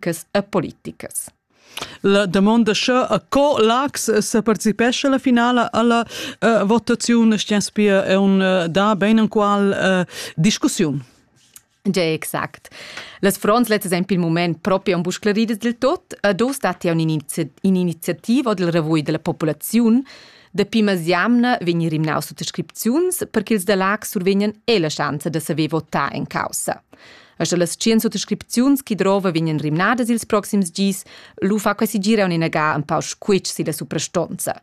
practicas e politicas. La domanda sche a co lax se participesce la finala alla uh, votazione Stianspia è un uh, da ben en qual uh, discussione. Ja, exact. Las fronts letas ein pil moment proprio un bu sclaridas del tot, a dos dati a un'iniziativa del revui della popolazione, da pimas jamna vegnir rimnaus sut prescripziuns per che ils da Lax survegnan e la schanza da saver votar en causa. E sche las tschien suttascripziuns chi drova vegnan rimnadas ils proxims gis, lu fa quasi gira un inaga un pau squitsch si la suprastonza.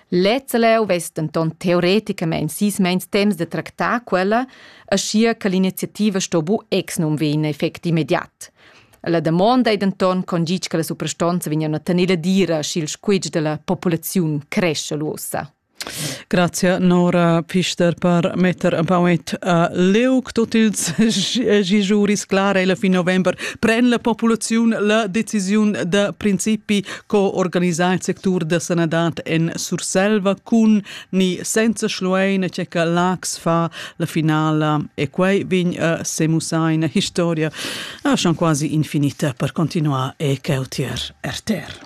Lezza leu vess denton teoreticamein sis meins temps de tractar quella, aschia che l'iniziativa sto bu exnum vein effect immediat. La damonda ei denton con gitg che la suprastonza vegna a tener la dira, sch'il squitsch della populaziun cresce lu ussa. Grazie Nora Pfister per metter un pauet a leuc tot ils giuris clar e fin november pren la populaziun la decisiun da principi co organizar il sectur da sanadad en Surselva cun ni senza Schluein che ca Lax fa la finala e quei vin a semusaina historia a ah, schon quasi infinita per continuar e cautier RTR.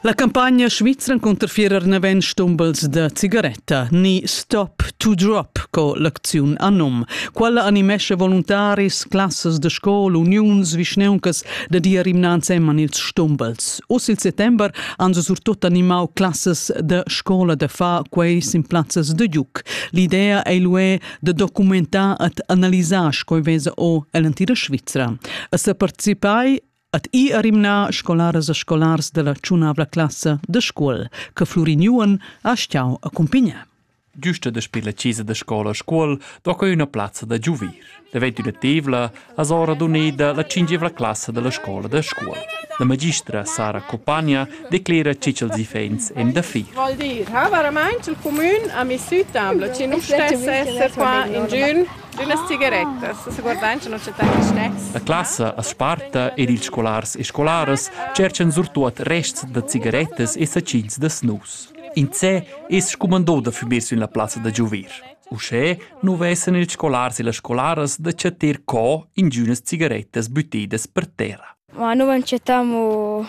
La campagna svizra cunter fierer naven stumbels da cigaretta ni Stop to Drop co l'acziun Anum. Quella animesce voluntaris, classas da scola, uniuns, vischneuncas da dir imnanz emman ils stumbels. Oz il settember han se surtut animau classas da scola da far quei sin plazzas da giuc. L'idea ei lué de documentar et analisar sco vesa o ell'antira Svizzera. A se participai at i arimna scolaras e scolars della ciunavla classa de scuol, che Fluriniuan ha stiau accompagnar. Giusta daspö la chesa da scola a Scuol do que üna plazza da giuver. Daventa tevla as ora duneda la cingevla classa della scola da Scuol. La magistra Sara Copagna declera che ils ifens en da fir. Vuol dir, ha veramente il comune a mi sütambla, ci non stesse essere qua in giun d'unas cigarettas, se guardant non c'è tanti snacks. La classa as sparta ed ils scolars e scolaras cerchan surtuot rests da cigarettas e sacins da snus. Insè es scumandò da füber sün la plazza da giover. Uschè nu vessan ils scolars e las scolaras da chattar co ingünas cigarettas büttedas per terra. Ma nu manchettamu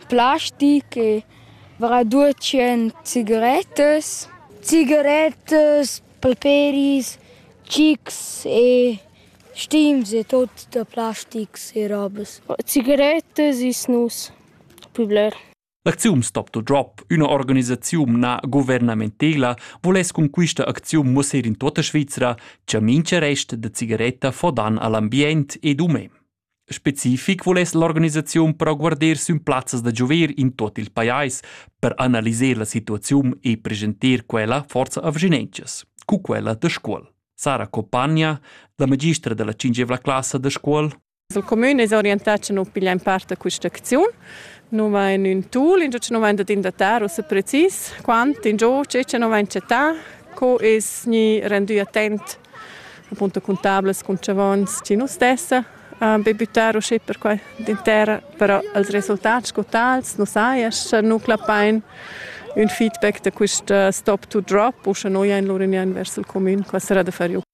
plastic e varà 200 cigarettas. Cigarettas, palperis, chics e stims e tot da plastics e robas. Cigarettas is nus, pü bler. L'acziun Stop to Drop, üna organisaziun na guvernamentela, voless cun quista acziun mussar in tota Svizra cha mincha rest da cigaretta fo dan all'ambient ed umè. Specific voless l'organisaziun però guarder sün plazzas da giover in tot il pajais per analiser la situaziun e presentar quella forza avginentschas, cu quella da scuol. Sara Copagna, la magistra della cingevla classa da scuol, Il cumün es orientà cha nu piglia in part da quist'acziun. Nu vain ün tool ingio cha nu vain dad indatar ussa precis quant ingio che cha nu vain chattà, co es gnü rendü attent appunto cun tablas, cun chavons chi nu stessa be büttar uschè per qua d'interra, però els resultats sco tals nu saja scha nu clappain ün feedback da quist stop to drop u scha nu jain lur ün vers il cumün, qua sarà da far ü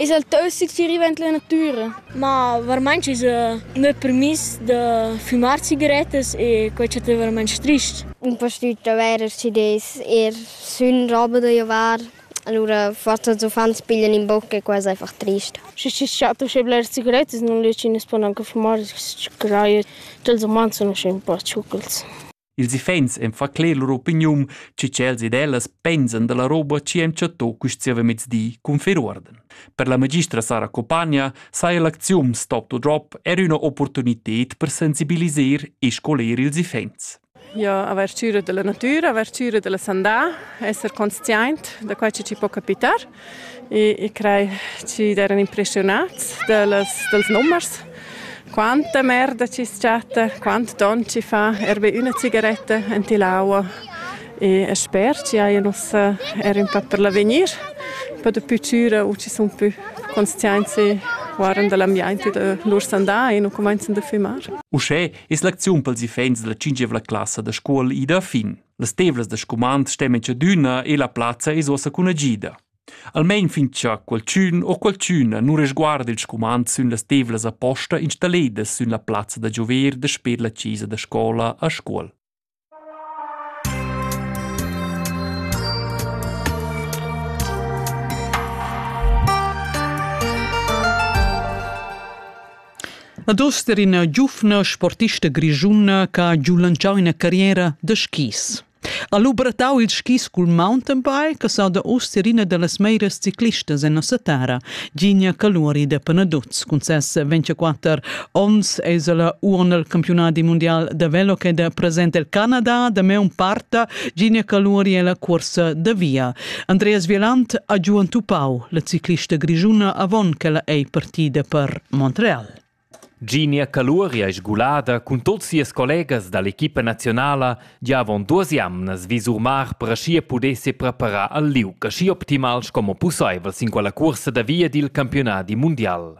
Es el teusit chi riva int la natüra, ma varmaint s'esa gnü permiss da fümar cigarettas e quai chatta varmaint strich. In pastüt avair schi des, eir sün roba da giovar, alura forsa els uffants piglian in boc e quai es einfach trist. Schi schi's chatta uschè bleras cigarettas, nun riescin as pon anche fumar, schi craja cha'ls umans sun usche ün po tschuchels. Ils iffaints en fa cler lur opiniun, chi tschels ed ellas pensan da la roba chi han chattò quist zievamezdi cun fer uorden. Per la magistra Sara Copagna saja l'acziun Stop to Drop er üna opportunited per sensibiliser e scoler ils iffaints. Ja, avertüra della natura, avertüra della sandà, esser consciaint da quai che ci può capitar. e, e crei chi d'eran impressionats dals, dals nummers. Quanta merda chi s'chatta, quant don chi fa er be üna cigaretta enti l'aua e sper chi hajan ussa er ün pa per l'avegnir, pa dapü chüra u chi sun pü consciaints guardan da l'ambiaint e da lur sandà e nu cumainzan da fümar. Uschè es l'acziun pels iffaints da la tschinchevla classa da scuol ida a fin. Las tevlas da scumand stemen tschadüna e la plazza es uossa cun agida. Almain fin cha qualchün o qualchüna nu resguarda il scumand sün las tevlas aposta installedas sün la plazza da giover dasper la chesa da scola a Scuol. La duster ina giuvna sportista grischuna che ha giu lantschau ina carriera da skis. Ha lubratau il skis cul mountainbike sa da uster ina dallas meiras ciclistas en nossa terra, Gina Caluri de Panaduz. Cun ses 24 onns es ella uon al campionadi mundial da velo ed è present el Canada da meun parta. Gina Caluri è la cuorsa da via. Andreas Vielant ha giu entupau la ciclista grischuna avon ch'ella ei partida per Montreal. Ginia Caluria è sgulada cun tuts sias collegas dall'equipa nazionala gia avon duas jamnas vi surmar per aschi pudesse preparar al liug aschi optimal sco possibel sin quella cursa da via dil campionadi mundial.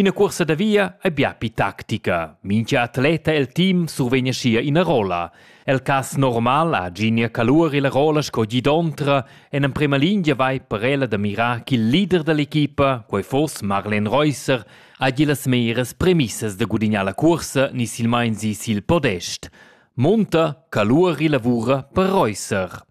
Ina cursa da via ei bia pli tactica. Mintga atleta el team survegn aschia ina rolla. El cass normal ha Ginia Calur la rolla sco gidontra en emprema lingia vai per ella da mirar ch'il leader dall'equipa, quei foss Marlen Reusser, hagi las meras premissas da gudignar la cursa ni silmein si sil podest. Monta Calur lavura per Reusser.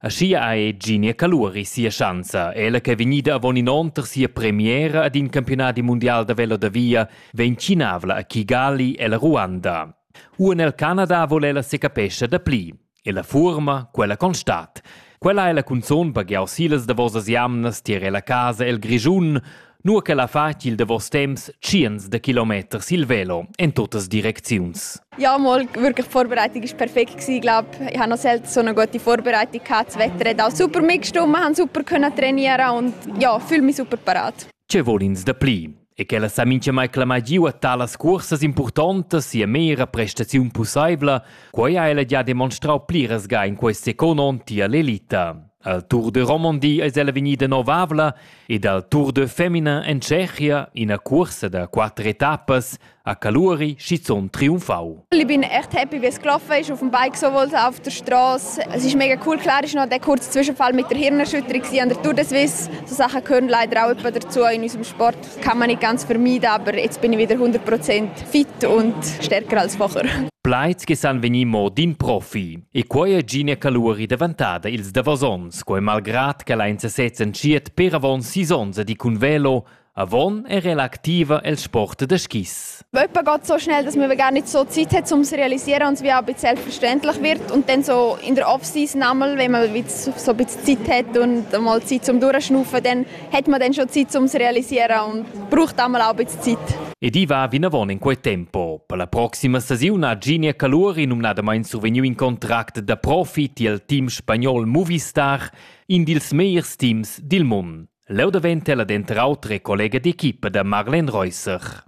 Aschia ha Eginia Caluri sia schanza, ella ch'ei vegnida avon in onn per sia premiera ad in campiunadi mundial da velo da via, vegn tschinavla a Kigali ella Ruanda. Uan el Canada vol ella secapescha dapli. E la fuorma, quella constat. Quella ha ella cunzun baghiau silas davosas jamnas tier ella casa el Grischun, nua ch'el ha fatg il davos temps tschients da kilometers il velo en tuttas direcziuns. Ja, mal wirklich die Vorbereitung war perfekt gewesen, glaube. Ich habe noch selten so eine gute Vorbereitung gehabt. Das Wetter hat auch super mitgestimmt, wir haben super können trainieren und ja, fühle mich super parat. Che vuol ins da pli? E che la sa mai clamar giu a talas cursas importantas sia mera prestaziun possibla, quai ha ella già demonstrau pliras ga in quest second onn tier l'elita. Al Tour de Romandie es ella vegnida novavla ed al Tour de Femina en Tschechia ina cuorsa da quatter etappas a Caluri schizunt triumfau. Ich bin echt happy, wie es gelaufen ist auf dem Bike sowohl auf der Straße. Es ist mega cool. Klar ist noch der kurze Zwischenfall mit der Hirnerschütterung an der Tour de Suisse. So Sachen gehören leider auch etwa dazu. In unserem Sport kann man nicht ganz vermeiden, aber jetzt bin ich wieder 100% fit und stärker als vorher. Pleits gesan veni mo din profi. E quei ei gie caluri daventada ils davos onns, quei malgrad ch'el ein sesez entschiet per avon sis onns ad ir cun velo avon era ella activa el sport da skis. Jemand geht so schnell, dass man gar nicht so Zeit hat, um zu realisieren und es wie auch ein bisschen selbstverständlich wird. Und dann so in der Off-Season einmal, wenn man so ein bisschen Zeit hat und mal Zeit zum Durchschnaufen, dann hätte man dann schon Zeit, um es realisieren und braucht einmal Arbeitszeit. Ed i va vinavon in quei tempo. Per la proxima stagiun ha Ginia Caluri numnadamain survegniu in contract da profi tiel team spagnol Movistar, in dils megliers teams dil mund. Leu daventa ella denter autre collega d'equipa da Marlen Reusser.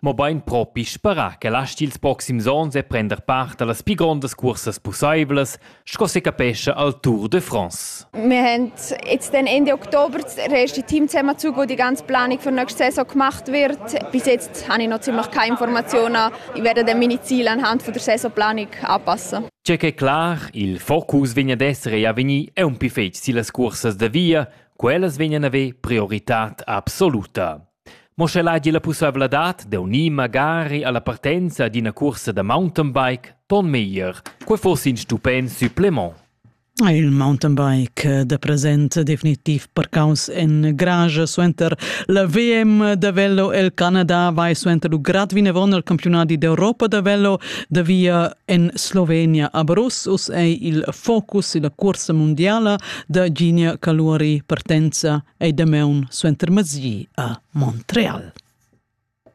mobein propi sperar ch'el astgi ils proxims onns e prender part allas pli grondas cursas pusseivlas sco secapescha al Tour de France. Wir haben jetzt dann Ende Oktober das erste Team zusammengezogen, das die ganze Planung für nächste Saison gemacht wird. Bis jetzt habe ich noch ziemlich keine Informationen. Ich werde dann meine Ziele anhand der Saisonplanung anpassen. C'è che clar, il focus vegna d'essere ja vegni è un più fetg sillas cursas da via, quellas vegnan aver priorità absoluta. Mo sche el hagi la pusseivladad d'unir magari alla partenza ad ina cuorsa da mountainbike, ton meglier. Quei fuss in stupent supplement. Il mountainbike da present definitiv parcaus en garage suenter la VM da velo el Canada vai suenter il grad vinavon al campionati d'Europa da velo da via en Slovenia a Brus. Uss ei il focus la cursa mondiala da Ginia Caluori partenza ei damaun suenter mezdi a Montreal.